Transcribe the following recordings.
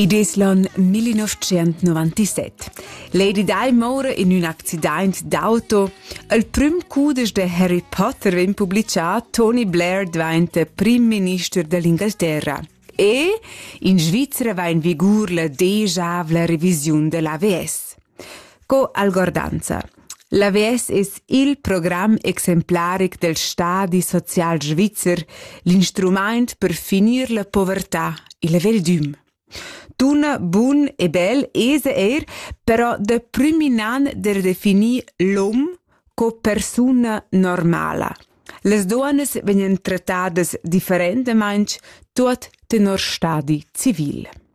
Id es l'on 1997. Lady Di mora in ün accident d'auto. Il prüm cudesch de Harry Potter vegn publicà, Tony Blair diventa prim minister dell'Inghilterra. E in Svizzera va in vigur la degiavla revisiun dell'AVS. Co algordanza. L'avess es il program exemplaric del stadi social svizzer l'instrumaint per finir la povertà, il veldüm. Tuna bun e bel esa eir però da prüminan der definir l'hom co persuna normala. Les duonas vegnan trattadas differentamaing tuot tenor stadi civil.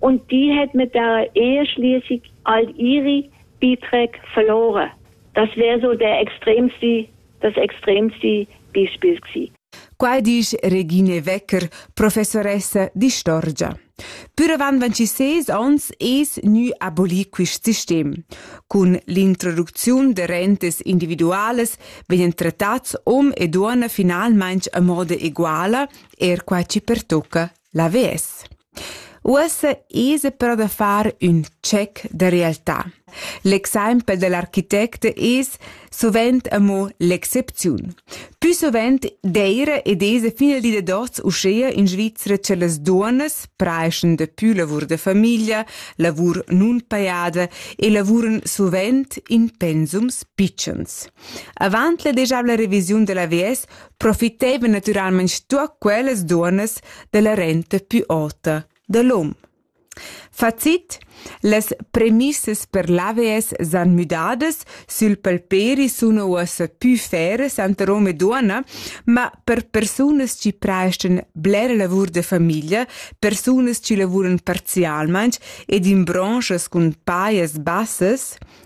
Und die hat mit der Ehe schließlich all ihre Beiträge verloren. Das wäre so der extremste, das extremste Beispiel gewesen. Quai disch Regine Wecker, professoressa di Storgia. Pür avant 26 ans es gnü abolir quist sistem. Cun l'introducziun de rentes individuales vegnan trattats om e duonna finalmaing a moda eguala, er qua ci pertocca Lavez. Uossa esa però da far ün check da realtà. L'exaimpel da l'architect es suvent amo l'excepziun. Pü suvent d'eira ed esa fin al di da dots uschea in Svizra cha las duonnas praeschan dapü lavur da famiglia, lavur nunpajada e lavuran suvent in pensums pitschens. Avant la degiabla revisiun da l'AVS profitevan natüralmaing stuot quellas duonnas dalla renta pü ota da l'hom. Facit Las premissas per l'AVS s'han müdadas, sül palperi suna uossa pü feras tanter hom e duonna, ma per persunas chi prestan blera lavur da famiglia, persunas chi lavuran parzialmaing ed in branschas cun pajas bassas,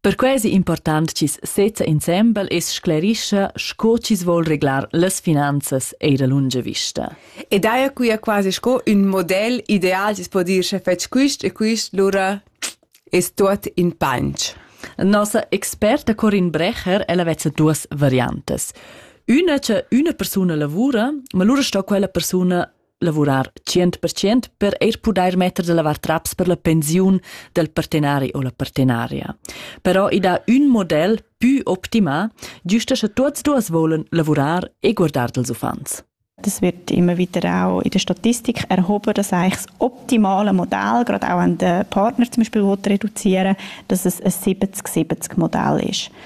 Perquei ei important chi's sezza insembel e sclerischa sco chi's vol reglar las finanzas eir a lunga vista. E daja quia quasi sco ün model ideal chi's po dir sche fetsch quist e quist, lura es tuot in panch. Nossa experta Corin Brecher, ella vezza duas variantas. Üna cha üna persuna lavura, ma lura sto quella persuna lavurar tschient per tschient per eir pudair metter da lavar traps per la pensiun del partenari o la partenaria. Però i dà ün model pü optimà, giusta sche tuots duas volen lavurar e guardar dels uffants. Das wird immer wieder auch in der Statistik erhoben, dass eigentlich das optimale Modell, gerade auch an den Partnern zum Beispiel, die reduzieren, dass es ein 70-70 Modell ist.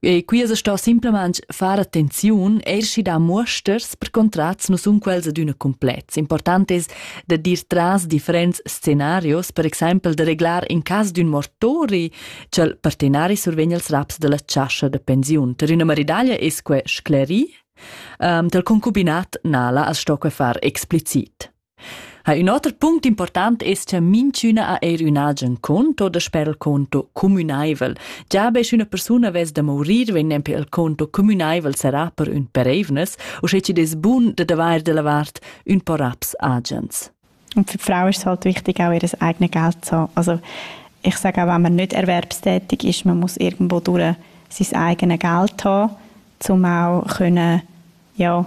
E qui es sto simplamaing far attenziun eir da muosters per contrats nu sun quels adüna complets. Important es da dir tras differents scenarios, per exaimpel da reglar in cas d'ün mortori cha'l partenari survegn als raps dalla chascha da pensiun. Per üna maridaglia es que scleri, um, del concubinat nala as sto que far explicit. Ha ün oter punct important es cha minchüna ha eir ün agen conto da sper il conto cumünaivel. Già be sch'üna persuna vess da mourir vegn nempe il conto cumünaivel sarà per ün pereivnas, uschè chi'd es bun da d'avair da lavart ün po raps agens. Und für die Frauen ist es halt wichtig, auch ihr eigenes Geld zu haben. Also ich sage auch, wenn man nicht erwerbstätig ist, man muss irgendwo durch sein eigenes Geld haben, um auch können, ja,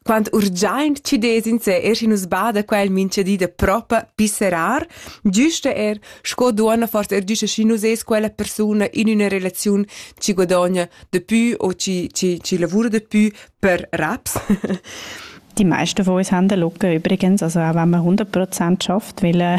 Quant urgiaint chi dess in se er schi nus bada quel minchedi da propa pisserar, giusta er sco duonna forse er giusta schi nus es quella persuna in üna relaziun chi guadogna de pü o chi, chi, chi lavura de pü per raps. Die meisten von uns haben locker übrigens, also auch wenn man 100% schafft, weil äh,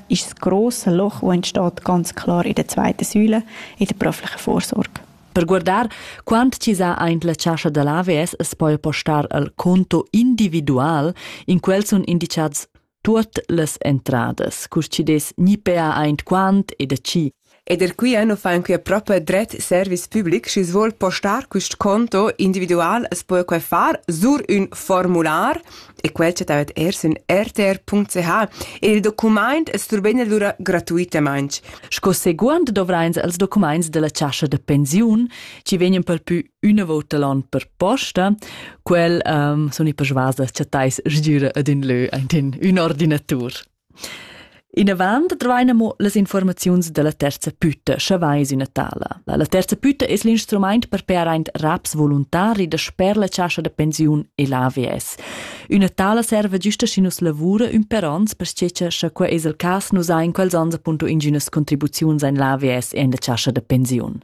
ist das grosse Loch, das entsteht ganz klar in der zweiten Säule, in der beruflichen Vorsorge. Per guardar quant chi sa aint la chascha da l'AVS es poi postar al conto individual, in quel sun indicats tuot las entradas, cur chi des ni pea aint quant e da chi Ed er quia nu fan quia propa dret service public, schi svoul postar quist conto individual as poja quai far sur ün formular e quel chattavet eir sün rtr.ch. E il documaint es surben alura gratuitamaing. Sco seguond dovrains els documaints della chascha da pensiun, chi vegnan pel pü üna vouta l'on per posta. Quel um, sun i persuas da chattais sgüra ad ün lö aint in ün ordinatur. Inavant dvain amo las infuormaziuns da la terza pütta, scha vais üna tala. La terza pütta es l'instrumaint per pear aint raps voluntari dasper la chascha da pensiun e l'AVS. Üna tala serva güsta schi nus lavura ün per ons, perche cha quai es il cas nus hain quels ons appunto ingünas contribuziuns in l'AVS e in la chascha da pensiun.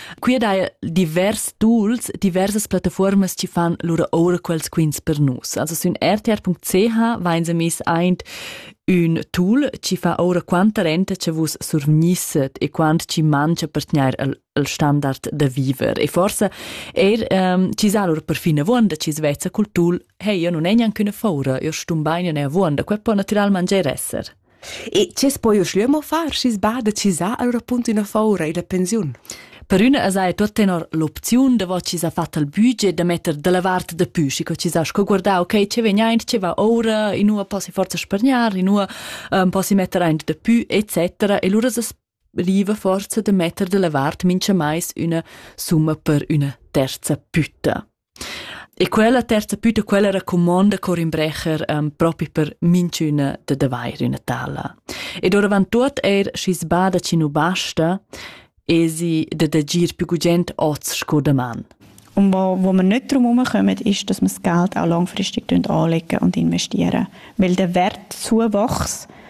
Qui dai divers tools, diversas plattaformas ci fan lura oura quels quins per nus. Also sün rtr.ch vain se mis aint ün tool ci fa oura quanta renta che vus survgnisset e quant ci mangia per tgnair al, al standard da viver. E forse er ähm, ci sa lur perfin avuonda ci svezza cul tool hey, io non è neanche una faura, io stum bain io ne avuonda, quel può naturalmente esser. E tges poi u schlieu mo far, schis bada chisà al rapunt üna foura illa pensiun? Per üna as haja tuot tenor l'opziun davo chi s'ha fat al budget da metter da la vart dapü, schi co chi s'ha sco guardà, okay, che vegn aint, che va oura, inua posi forza spargnar, inua um, posi metter aint dapü, etc. E lura s'as riva forza da metter da la vart mincha mais üna summa per üna terza pütta. E quella terza püta quella racumonda Corin Brecher um, propi per minchüna da d'avair üna tala. Ed oravant tuot eir schi sbada chi nu basta, esi de d'agir più gugent oz sco daman. Und wo, wo wir nicht darum herumkommen, ist, dass wir das Geld auch langfristig anlegen und investieren. Weil der Wert Zuwachs